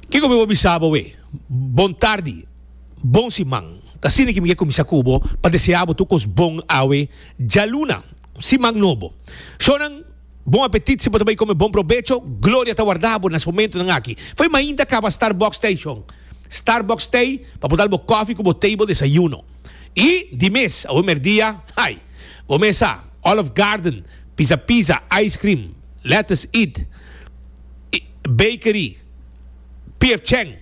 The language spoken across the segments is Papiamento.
Kiko mi por bisa bo awe? Bon tardi, bon siman. Ta asina ki mi ke kuminsá ku bo pa deseá bo tur kos bon awe djaluna, siman nobo. Shónan, bon apetit! Si bo ta bai kome, bon probecho! Gloria ta warda bo na es momentunan aki. Fo'i mainta kaba Starbucks Station. Starbucks Tei pa por dal bo kòfi ku bo tei, bo desayuno. I di mes, awe merdia, ai, bo mes sa, Olive Garden, Pisa Pisa, ice cream, lettuce, eat. Bakery, Pier Cheng,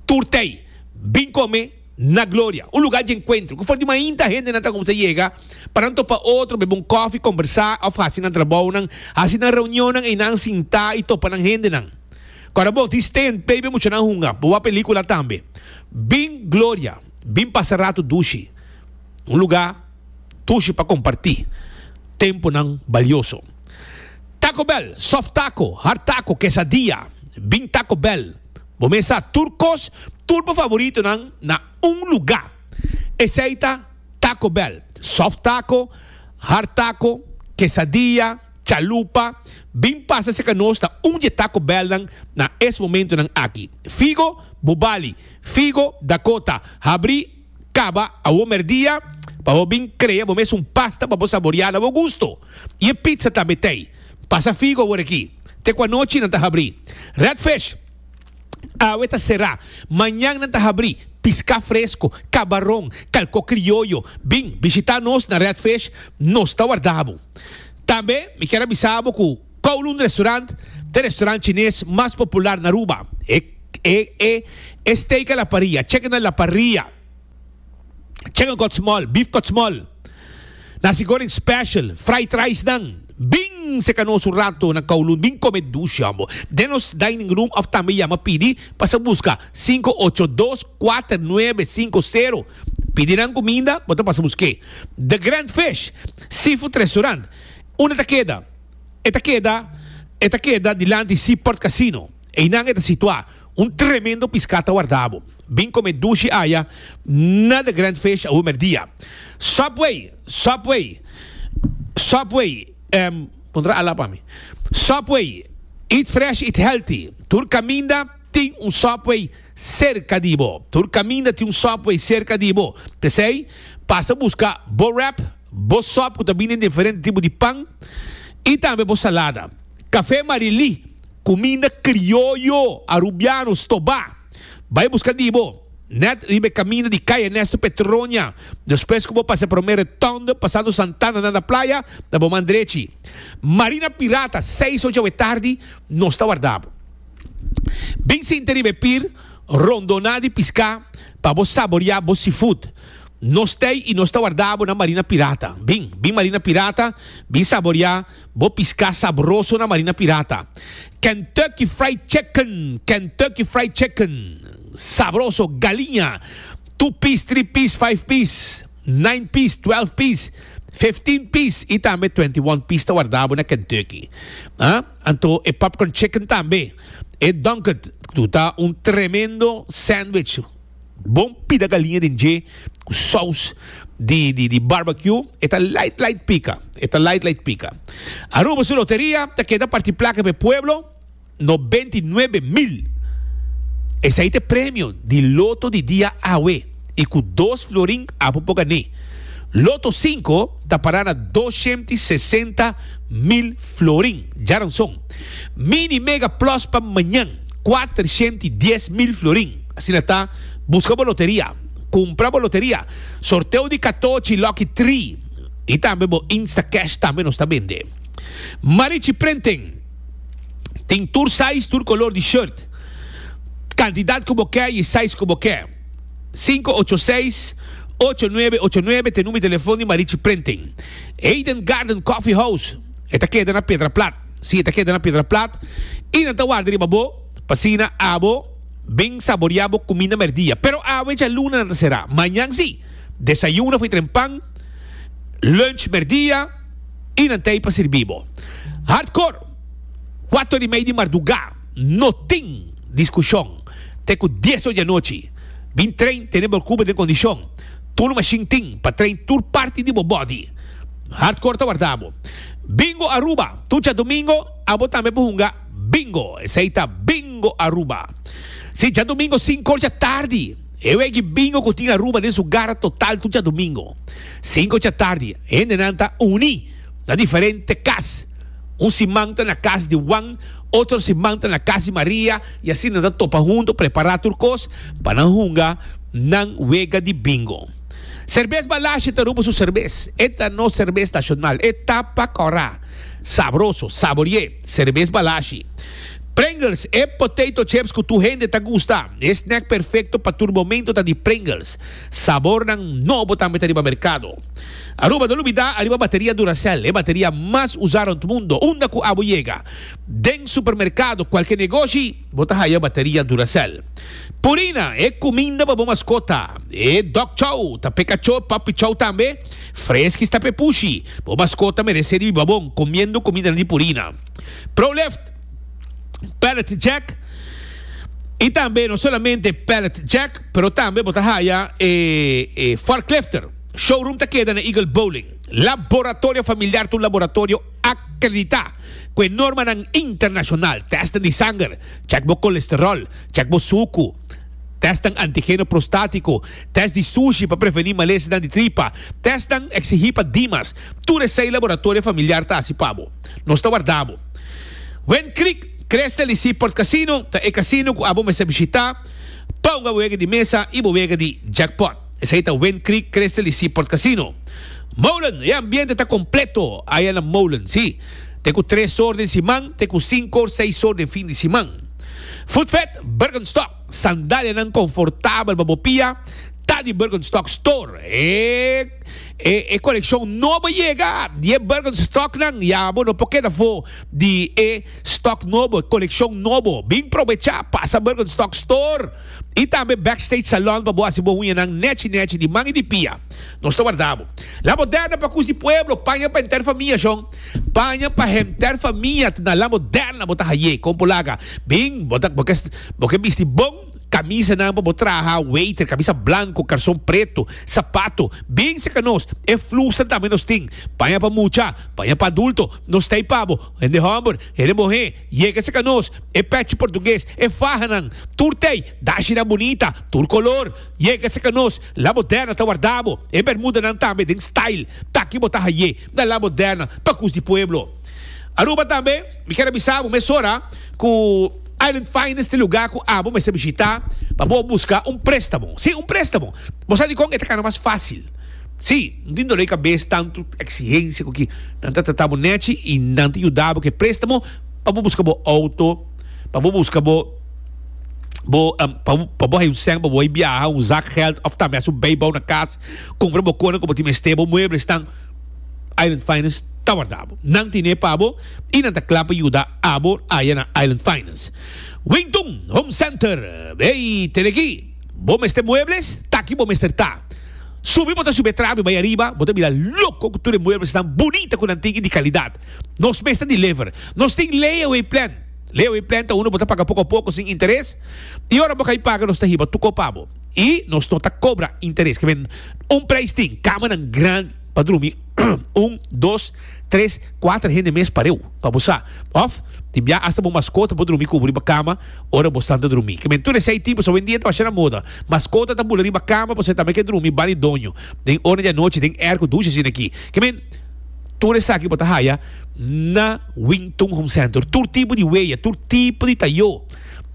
Tur Tei, Bin Come na Gloria, un lugar di encuentro cu for di mainta hende nan ta cuminsa yega pa nan topa otro, bebe un coffee, combersa of haci nan trabounan. Haci nan reunionnan einan sinta y topa nan hendenan. Ora bo tin stay and play be muchanan hunga, bo wak pelicula tambe. Bin Gloria, Bin Pasa Rato Dushi, un lugar dushi pa comparti temponan balioso. Taco Bell, soft taco, hard taco, quesadilla, bin Taco Bell. Bo mesa tur cos, tur bo favoritonan na un luga. Esey ta Taco Bell, soft taco, hard taco, quesadilla, chalupa, bin pasa si ka nos ta un dje Taco Bellnan na es momentonan aki. Figo, Bubali, Figo, Dakota, Habri, Kaba awor merdia pa bo bin krea bo mes un pasta pa bo saboria na bo gusto. I e pizza tambe t'ei. Pasa figu awor aki. Te ku anochi nan ta habri. Redfish, Awe ta sera. Mañan nan ta habri. Piská fresko, kabaron, kalko krioyo. Bin bishitá nos na Redfish, nos ta warda bo. Tambe mi kier a bisa bo ku Kowloon Restaurant ta e restaurant chines mas popular na Aruba. E steak a la parrilla, chicken a la parrilla, chicken kòtsmòl, beef kòtsmòl, nasi goreng special, fried rice nan, bin seka nos un rato na Kowloon, bin kome dushi hombo. Den nos dining room òf tambe yama pidi pasa buska sinku ocho dos kuater nuebe sinku sero. Pidi nan kuminda, bo ta pasa busk'é. The Grand Fish Seafood Restaurant, unda ta keda? e ta keda e ta keda dilanti Sea Port Casino. Einan e ta situá. Un tremendo piská ta wardá bo. Bin komé dushi aya na The Grand Fish awor merdia. Subway, Subway, Subway, em, kontra a la pa mi. Subway, Eat Fresh, Eat Healthy, tur kaminda. Tin un Subway serka di bo. Tur kaminda tin un Subway serka di bo. P'esei, pasa buska bo wrap, bo sub ku ta bini den diferente tipo di pan, i tambe bo salada. Kafé Marilí, kuminda krioyo arubiano stobá, bai buska di bo nèt riba e kaminda di Kay Ernesto Petroña. Despues ku bo pasa e promé rotonde pasando Santana nanda playa, na bo man drechi. Marina Pirata, seis ocho awe tardi, nos ta warda bo. Bin sinta riba e pir rondoná di piská pa bo saboriá bo seafood. Nos ta ei i nos ta wardá bo na Marina Pirata. Bin, bin Marina Pirata, bin saboriá bo piská sabroso na Marina Pirata. Kentucky Fried Chicken, Kentucky Fried Chicken, sabroso, galiña, two piece, three piece, five piece, nine piece, twelve piece, fifteen piece i tambe twenty one piece ta wardá bo na Kentucky. Anto e popcorn chicken tambe. E Dunkert tu ta un tremendo sandwich. Bon pida galiña den dje cu saus di di barbecue. E ta light light pica. E ta light light pica. Aruba su loteria ta keda parti placa p'e pueblo, no benti nuebe mil. Esei ta e premio di loto di dia awe. i ku dos florin apo por gané. Loto sinku ta pará na doshiènt i sesenta mil florin. Djaranson. Mini Mega Plus pa mañan, kuatrashiènt i dies mil florin. Asina ta, buska bo loteria, kumpra bo loteria, sorteo di katochi, Lucky Three i tambe bo Instacash tambe nos ta bende. Marichi Printing tin tur size, tur kolor di shirt. Kantidat ku bo kè i e size ku bo kè. Sinku ocho seis, ocho nuebe ocho nuebe ta e number di telefon di Marichi Printing. Eden Garden Coffee House, e ta keda na Pedra Plat. Sí, e ta keda na Pedra Plat i nan ta warda riba bo, p'asina abo bin saboriá bo kuminda mèrdia. Pero awe djaluna nan ta será. Mañan sí, desayuno for tren pan, lunch mèrdia i nan ta ei pa sirbi bo. Hardcore, kuater i mei di mardugá. No tin diskushon te ku dies or di anochi. Bin train tene bo kuba den kondishon. Tur mashin tin pa train tur parti di bo bòdi. Hardcore ta warda bo. Bingo Aruba, tur djadumingo abo tambe por hunga Bingo. Esei ta Bingo Aruba. Si, djadumingo sinku or dja tardi. E wegi Bingo ku tin Aruba den su gara total tur djadumingo. Sinku or dja tardi hendenan ta uni na diferente kas. Un siman ta na kas di Wan. Otro siman ta na Casi Maria y asina nan ta topa hunto prepara tur cos pa nan hunga nan wega di bingo. Cervez Balasje ta rumbo su cervez. E ta nos cervez nacional. E ta pa cora. Sabroso, sabori'e, Cervez Balasje. Pringles, e potato chips cu tur hende ta gusta. E snack perfecto pa tur momento ta di Pringles. Sabornan nobo tambe ta riba mercado. Aruba, no lubida ariba bateria Duracell, e bateria mas usa rond mundo, unda cu abo yega. Den supermerkado, kualke negoshi, bo ta haya bateria Duracell. Purina, e kuminda pa bo maskota, e dog chow, ta p'e kachó, puppy chow tambe, Friskies ta p'e pushi. Bo maskota meresé riba bon kumiendo kumindanan di Purina, Prolift, Pallet Jack i tambe no solamente Pallet Jack pero tambe bo ta haya e forklifter. Showroom ta keda na Eagle Bowling. Laboratorio Familiar ta un laboratorio. A kreditá ku e normanan internashonal, tèsten di sanger, chèk bo kolesteròl, chèk bo suku, tèstnan antigeno prostátiko, tèst di sushi pa prevení malesnan di tripa, tèstnan eksigí pa Dimas. Tur esei laboratorio familiar ta hasi pa bo. Nos ta wardá bo. Wind Creek, Crystal i Seaport Casino ta e kasino ku abo mester bishitá pa un abuega di mesa i boega di jackpot. Esei ta Wind Creek Crystal y Seaport Casino. Molen, E ambiente ta completo aya na Molen, si. T'e cu tres or den siman t'e cu cinco or seis or den fin di siman. Footfed, Birkenstock, sandalianan confortabel pa bo pia ta di Birkenstock Store. E e coleccion nobo yega di e Birkenstocknan ya bo no por keda fo di e stock nobo, e coleccion nobo. Bin probecha pasa Birkenstock Store. y tambe Backstage Salon pa bo haci bo huñanan nechi nechi di man y di pia. Nos ta warda bo. La Moderna pa cus di pueblo, paña pa henter famia John, paña pa henter famia ta na La Moderna bo ta hayé, con bo laga, bin bo ta bo ke bisti bon camisanan pa bo traha, waiter, camisa blanco, calzon preto, zapato, bin cerca nos, e flustra tambe nos tin, paña pa mucha, paña pa adulto, nos ta ey pa bo, hende homber, hende muhé. Yega sa ka nos, e pechi portugues, e fahanan, tur tei, dashinan bunita, tur color. Yega sa ka nos, La Moderna ta warda bo, e bermudanan tambe den style. Taki bo ta haye na La Moderna pa cus di pueblo. Aruba tambe, mi kier a bisa bo mesora cu Island Finest e lugar cu abo mester bishita pa bo busca un prestamo. Si, un prestamo. Bo sa dicon e ta cana mas facil? Sí, un tin dolé kabes tantu eksihensia ku ki nan ta tratá bo nèchi i nan ta yuda bo ku e préstamo pa bo buska bo outo, pa bo buska bo bo pa bo hai un sèn pa bo bai biaha, un zakgèld òf tambe hasi un beibou na kas, kumpra bo konan ku bo tin mester, bo muebles tan. Island Finance ta warda bo. Nan tine pa bo i nan ta kla pa yuda abo aya na Island Finance. Wington Home Center, Hey, tene ki bo mester muebles? Ta ki bo mester ta. Subi bo ta subi e trapi bai ariba, bo ta mira loko ku tur e mueblesnan bunita ku nan tin i di kalidat. Nos mes ta deliver. Nos tin layaway plan. Layaway plan ta unda bo ta paga poko a poko sin interes, i ora bo kai paga nos ta hiba tur kos pa bo. I nos no ta kobra interes. Ke men un preis tin, kamanan gran. pa drumi un, dos, tres, kuater hende mes parew pa bo sa. Òf tin bia asta bo maskota por drumi kubo riba kama ora bo stanta drumi. Kimen tur esei tipos awendia ta basha na moda. Maskota ta bula riba kama pasobra e tambe ke drumi bani doño den ora di anochi den erko dushi asin'aki. Kimen tur esaki bo ta haya na Wingtun Home Center. Tur tipo di weya, tur tipo di tayo.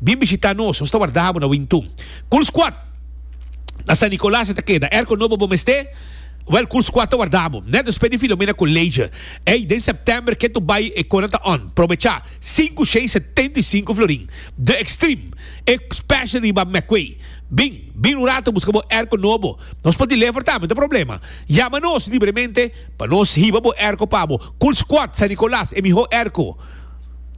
Bin bishita nos, nos ta warda bo na Wingtun. Cool Squad na San Nicolas e ta keda. Erko nobo bo mester? Well, kurs kua ta warda bo. Nèt despues di Filomena ku Leidje. Ey, den sèptèmber ke tur bai e kona ta on. Probechá, sinku shei setenta i sinku florin. The Extreme, e special riba Meckway. Bin, bin un rato buska bo airco nobo. Nos por di lever tambe, ta problema? Yama nos libremente pa nos hiba bo airco pa bo. Kurs Quad San Nicolas, e mihó airco.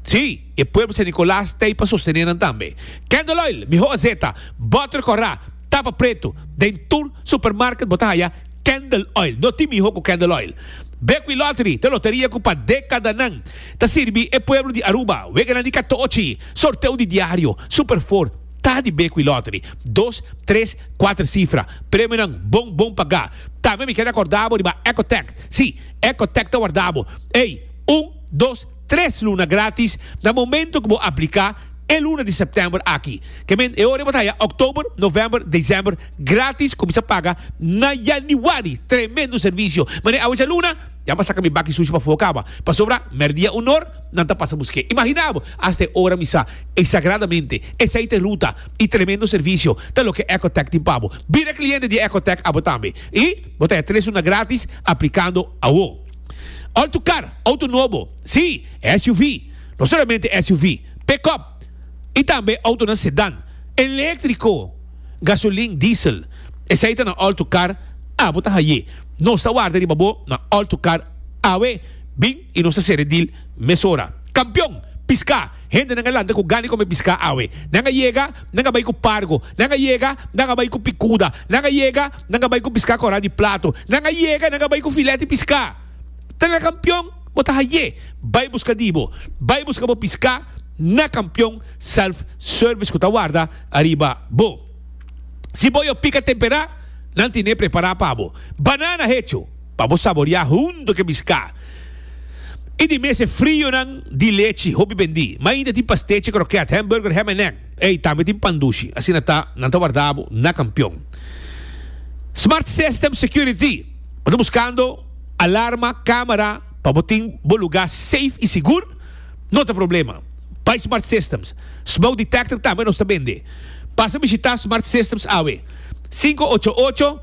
Sí, e pueblo San Nicolas ta ey pa sostené nan tambe. Candle Oil, mihó azeta. Butter Corrá. Tapa pretu, Den tur supermarket bo ta haya candle oil. No tin miho cu candle oil. Bequi Lottery ta loteria cu pa decadanan ta sirbi e pueblo di Aruba. Weganan di catochi, sorteo di diario, Super Four, ta di Bequi Lottery. Dos, tres, cuater cifra. Premionan bon bon paga. Tambe mi ker acorda bo riba Ecotech. Si, Ecotech ta warda bo. Ey, un, dos. tres luna gratis na momento cu bo aplica e luna di september aki. Ke men e ora bo ta haya oktober, november, december gratis cuminsa paga na yanuari. Tremendo servicio. Mane awe djaluna ya m'a saca mi baki sushi pafuo caba. Pasobra merdia un or nan ta pasa busque. Imagina bo hasta e ora mi sa e sagradamente e sai te ruta y tremendo servicio ta loke Ecotec tin pa bo. Bira cliente di Ecotec abo tambe y bo ta haya tres luna gratis aplicando awo. Alto kar, auto nobo, sí, SUV, no solamente SUV, pick-up i tambe autonan sedàn, eléktriko, gasolin, diesel. Esei ta na alto kar, abo ta haye. Nos ta warda riba bo na alto kar awe. Bin i nos ta sere dil mesora. Kampion! Piská! Hendenan a lanta ku gana di kome piská awe. Nan a yega, nan a bai ku pargo. Nan a yega, nan a bai ku pikuda. Nan a yega, nan a bai ku piská kòrá di plato. Nan a yega, nan a bai ku filèt di piská. Ta na kampion bo ta haié. Bai buska di bo. Bai buska bo piská na kampion self service ku ta warda ariba bo. Si boyo pika temperá, nan tine prepará pa bo banana hecho. pa bo saborea hunto cu e biscá. I di mes e frionan di lechi, hopi bendi. Mainta tin pastechi croquet, hamburger, ham en egg. Ey, tambe tin pan dushi. Asina ta, nan ta warda bo na Campeon. Smart System Security, Bo ta buscando alarma, camera, pa bo tin bo lugá safe i sigur? No ta problema. Bai Smart Systems. Smoke detector tambe nos ta bende. Pasa bishitá Smart Systems awe. Sinku ocho ocho.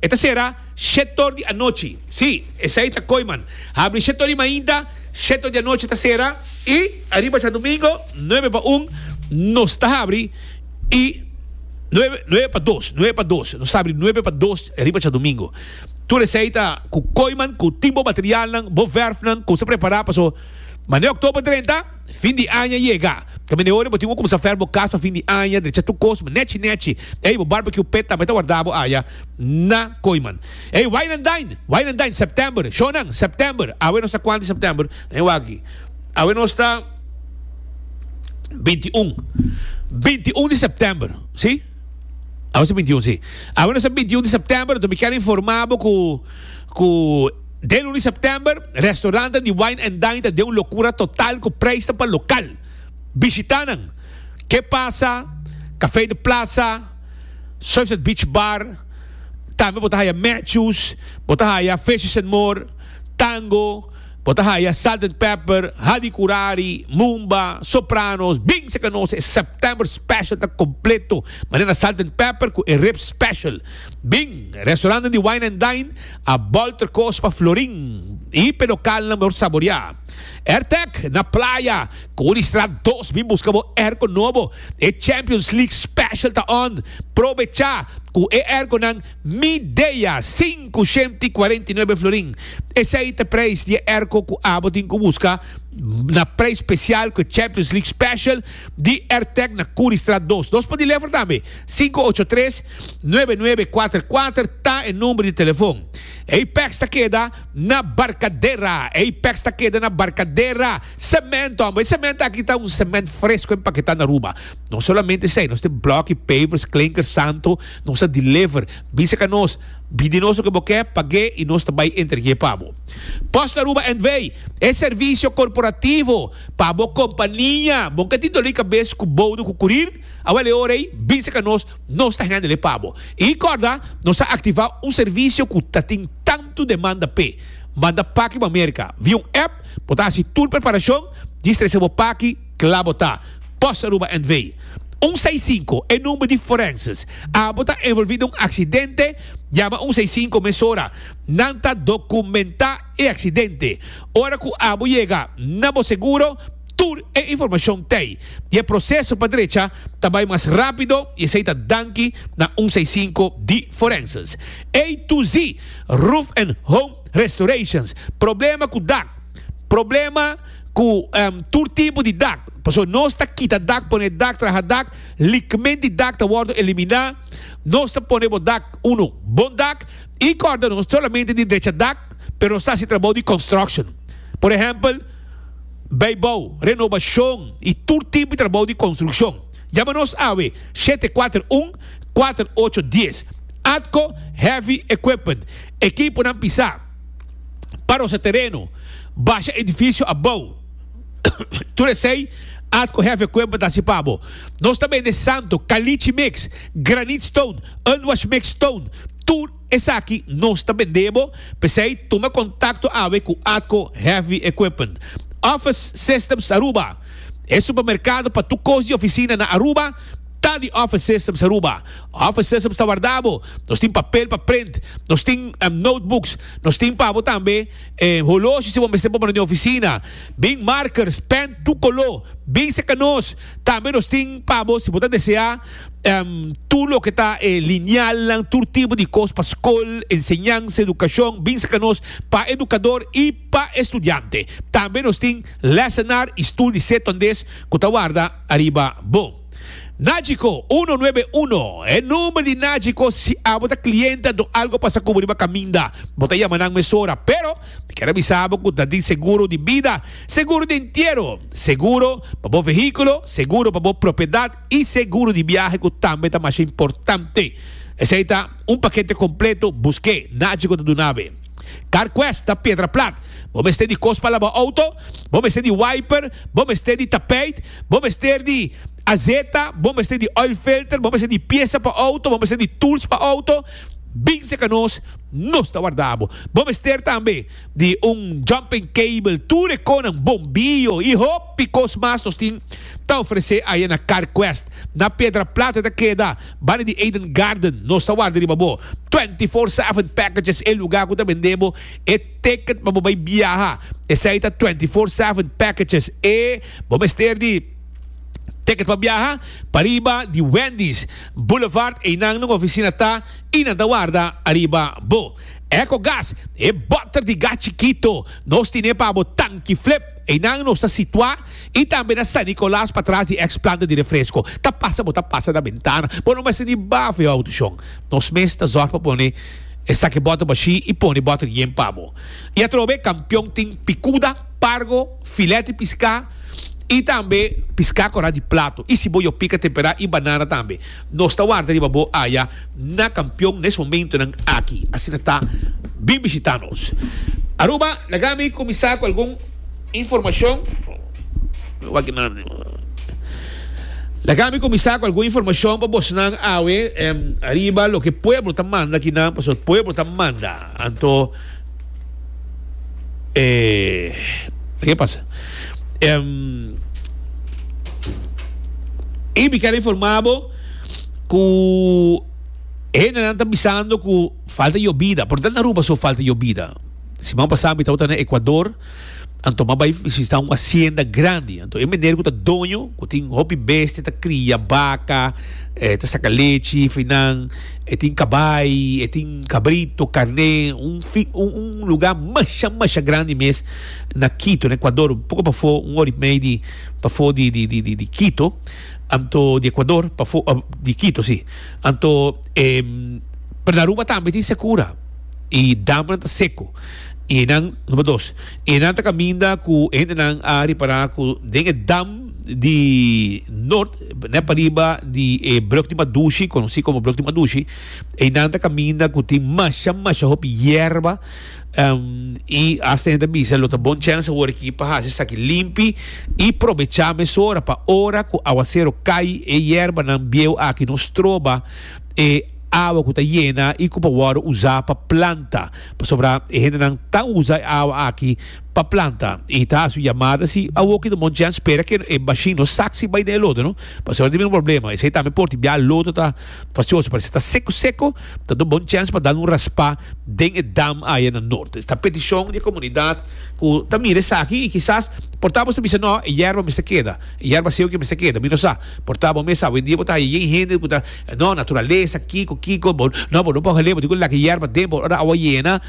E ta sera shetor di anochi. Sí, esei ta koiman. Habri shetor di mainta, shetor di anochi ta sera. I ariba djadumingo, nuebe pa un, nos ta habri. I nuebe, nuebe pa dos, nuebe pa dos. Nos ta habri nuebe pa dos riba djadumingo. Tur esei ta ku koiman, ku tin bo materialnan, bo vèrfnan, kos ta prepará. Paso, mane oktober drenta. Fin di aña yega. Camin'e ora bo tin un cuminsa fer bo cas pa fin di aña, drecha tur cos, ma nechi nechi. Ey, bo barbecue pet tambe ta warda bo aya na Coiman. Ey, wine and dine, wine and dine, September, shownan, September. Awe nos ta cuanti September? Nen waki. Awe nos ta binti un. Binti un di September, si? Awe nos ta binti un, si. Awe nos ta binti un di September, enton mi kier informa bo cu, cu. Den luna di September, restaurantenan di Wine and Dine ta den un locura total cu prijsnan pa local bishitanan, Ke Pasa, Café de Plaza, Sunset Beach Bar, tambe bo ta haya Matthews, bo ta haya Fishes and More, Tango, bo ta haya Salt and Pepper, Hadi Curari, Mumba, Sopranos, Bing sa canosa e September Special ta completo manera Salt and Pepper cu e Ribs Special. Bing, restaurantenan di Wine and Dine. A bolter kos pa Florin i pe lokalnan por saboreá. Ertec na Playa, Koe di Straat dos bin buska bo airco nobo. E Champions League Special ta on! Probechá cu e airconan Midea sinku shemti i kuarenta i nuebe florin. Esei ta prijs di e airco cu abo tin cu buska na prijs special cu e Champions League Special di Ertec na Koe di Straat dos. Nos por di lever tambe. Sinku ocho tres, nuebe nuebe kuater kuater ta e number di telefon. Ey peks ta keda na Barcadera. Ey peks ta keda na Barcadera. Cemento, amo. E cemento aki ta un cement fresco empaqueta na Aruba. No solamente esey, nos tin blocky, pavers, klinker, santo. Nos a deliver. Bisa ka nos. Bi di nos loke bo ke, pag'e y nos ta bay entreg'e pa bo. Post Aruba NV. E servicio corporativo pa bo compania. Bo ka tin doli cabes cu boudo cu curir? Awor e ora ei, bisa ka nos, nos ta hende lei pa bo. I kòrda, nos a aktivá un servisio ku ta tin tantu demanda p'e. Manda paki bo Amerika, via un app, bo ta hasi tur preparashon, dje stresa bo paki, kla bo ta. Pòs Aruba NV. Un seis sinku, e number di forenses. A bo ta envolví den un aksidente, yama un seis sinku mesora. Nan ta dokumentá e aksidente. Ora ku a bo yega na bo seguro, Tur e informashon t'ei i e proseso pa drecha ta bai mas rápido i esei ta danki na un seisinku di Forenses. A to Z Roof and Home Restorations, Problema ku dak, Problema ku tur tipo di dak, pasobra nos ta kita dak, pone dak, traha dak, likmen di dak ta wòrdu eliminá. Nos ta pone bo dak unu bon dak i kòrda no solamente di drecha dak, pero nos ta hasi trabou di construction, por ehèmpel, beibou, renobashon i tur tipo di trabou di konstrukshon. Yama nos awe shete kuater un, kuater ocho dies. ATCO Heavy Equipment, ekiponan pisá, parosa tereno, basha edifisio abou, tur esei ATCO Heavy Equipment hasi pa bo. Nos ta bende santo, kalichi mix, granit stone, unwash mix stone, tur. Esaki nos ta bend'é bo, p'esei tuma kontakto awe ku Atco Heavy Equipment. Office Systems Aruba, E supermerkado pa tur kos di ofisina na Aruba ta di Office Systems Aruba. Office Systems ta warda bo, nos tin papel pa print, nos tin notebooks, nos tin pa bo tambe holoshi si bo mester pa bo na den ofisina, bin markers, pèn tur koló, binse ka nos. Tambe nos tin pa bo si bo ta desea tur loke ta e linealnan, tur tipo di cos pa scol, enseñansa, educacion, bin sa ca nos pa educador y pa estudiante. Tambe nos tin lessenaar y stoel di Setondes cu ta warda ariba bo. Nagico uno nuebe uno, e number di Nagico si abo ta cliente anto algo pasa cu bo riba caminda, bo ta yama nan mesora pero Mi kier a bisa bo ku ta tin seguro di bida, seguro di entiero, seguro pa bo vehíkulo, seguro pa bo propiedat i seguro di biahe ku tambe ta masha importante. Esei ta un pakete kompleto, busk'é, nadje ku ta duna ab'é. Carquest ta piedra plat, bo mester di kos pa laba outo, bo mester di wiper, bo mester di tapijt, bo mester di azeta, bo mester di oil filter, bo mester di piesa pa outo, bo mester di tools pa outo, bin seka nos. Nos ta warda bo. Bo mester tambe di un jumping cable, tur e conan, bombio y hopi cos mas nos tin ta ofrece aya na Carquest. Na Pedra Plata ta keda banda di Eden Garden. Nos ta warda riba bo. Twenty four seven packages e lugar cu ta bende bo e ticket pa bo bay biaha. Esey ta twenty four seven packages e bo mester di ticket pa biaha pariba di Wendy's Boulevard. Eynan nan oficina ta. y nan ta warda ariba bo. Ecogas, e botter di gas chikito, nos tine pa bo tanki flip. Einan nos ta situa y tambe na San Nicolas patras di ex planta di refresco. Ta pasa bo ta pasa na bentana, bo no mester ni baha for e autoshon. Nos mes ta zorg pa pone esaki botter bashi y pone botter yen pa bo. Y atrobe Kampion tin picuda, pargo, filet di pisca y tambe pisca cora di plato y si bo yopica tempera y banana tambe. Nos ta warda riba bo aya na Kampion nes momentonan aki. Asina ta, bin bishita nos. Aruba, laga mi kuminsá ku algun informashon. Laga mi kuminsá ku algun informashon pa bosnan awe, riba loke pueblo ta manda kinan, pasobra pueblo ta manda. Anto. E ke pasa? Em y mi ker informa bo ku hendenan ta bisando ku falta yobida, por e ta na Aruba so falta yobida. Siman pasa mi tabata na Ekuador. Anto m'a bai visita un asienda grandi. Anto e meneer ku ta doño, ku tin hopi bestia, ta kria baka, e ta saka lechi for nan, e tin kabai, e tin kabrito, karné, un fi, un, un lugá masha, masha grandi mes na Kito, na Ekuador, un poko pafó, un hori mei di pafó di, di, di, di, di Kito. Anto, di Ekuador, pafó, di Kito, si. Anto, em, per na Aruba tambe tin sekura i damnan ta seko. Enan, number dos, enan ta kaminda ku e hendenan a ripará ku den e dam di Nort, nèt pariba di e Brug di Madushi, konosí komo Brug di Madushi, einan ta kaminda ku tin masha masha hopi yerba, i hasta enan ta bisa lo ta bon chèns awor aki pa hasi esaki limpi i probechá mesora pa ora ku awasero kai e yerbanan bieu aki no stroba e awa ku ta yena i ku por wòrdu usá pa planta. Pasobra e hendenan ta usa e awa aki pa planta y ta haci su yamada si awo ki ta bon djen spera ke e machine no saksi bay den e loto no pasobra tin bin un problema esey tambe por tin bia loto ta facioso pero si ta seco seco ta do bon chens pa dal un raspa den e dam aya na norte esta peticion di e comunidad cu ta mira esaki y kisas por ta boso ta bisa no e yerba mester keda e yerba seco mester keda mi no sa por ta bo mi a sa hoendia bo ta haya yen hende cu ta No, naturalesa, kiko, kiko, bo no, bo no por hale, bo tin ku laki yerba den bo ora awa yena,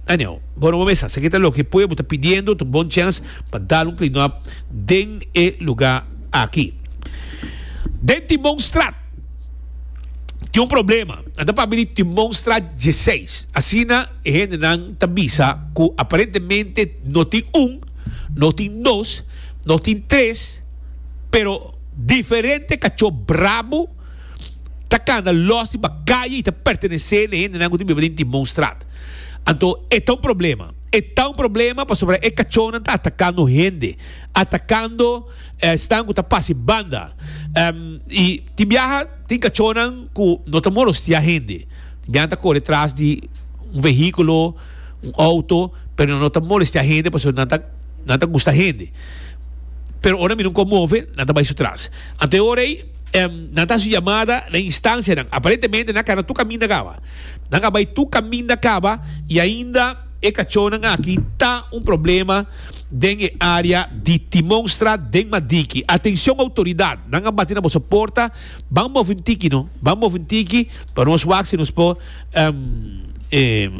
anyway. Bo no por mesa sa kita loke pueblo ta pidiendo, ta un bon chèns pa dal un cleanup den e luga aki. Den Timonstraat tin un problema, nan ta pabia di Timonstraat dieseis, asina e hendenan ta bisa ku aparentemente no tin un, no tin dos, no tin tres, pero diferente cachó brabo ta cana los riba caye y ta pertenece na hendenan cu tin biba den Timbon Straat. Anto e ta un problema, e ta un problema pasobra e cachónan ta atacando hende, atacando esnan cu ta pasa e banda y tin biaha tin cachónan cu no ta molostia hende, tin biaha nan ta core tras di un vehiculo, un auto, pero nan no ta molestia hende pasobra nan ta. nan ta gusta hende. Pero ora mi no con move, nan ta bai su tras. Ante e ora ei, em, nan ta haci llamada na instancianan. Aparentemente nan a cana tur caminda caba. Nan a bai tur caminda caba y ainda e cachornan aki ta un problema den e area di Timonstraat den Madiki. Atencion autoridad, nan a bati na boso porta, ban move un tiki no, ban move un tiki pa nos wak si nos por Um, e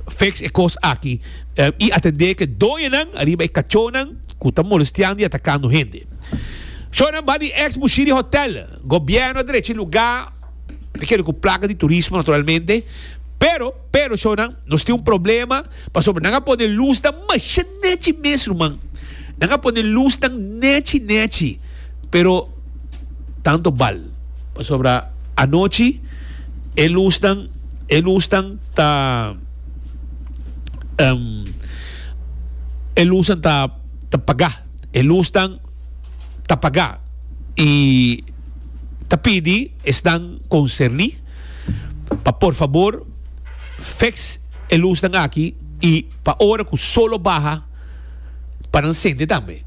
fix e cos aki, um, y atende ke doñanan ariba e cachonan cu ta molestiando y atacando hende. Shownan ba di ex Bushiri Hotel. Gobierno a drechi luga te kere cu placa di turismo naturalmente, pero, pero shownan nos tin un problema pasobra nan a pone luznan masha nechi mes ruman. Nan a pone luznan nechi nechi, pero. tanto bal. Pasobra anochi e lusnan, e lusnan ta, em, e lusnan ta, ta pagá. E lusnan ta pagá. I ta pidi esnan konserní pa por fabor feks e lusnan aki i pa ora ku sol a baha pa nan sende tambe.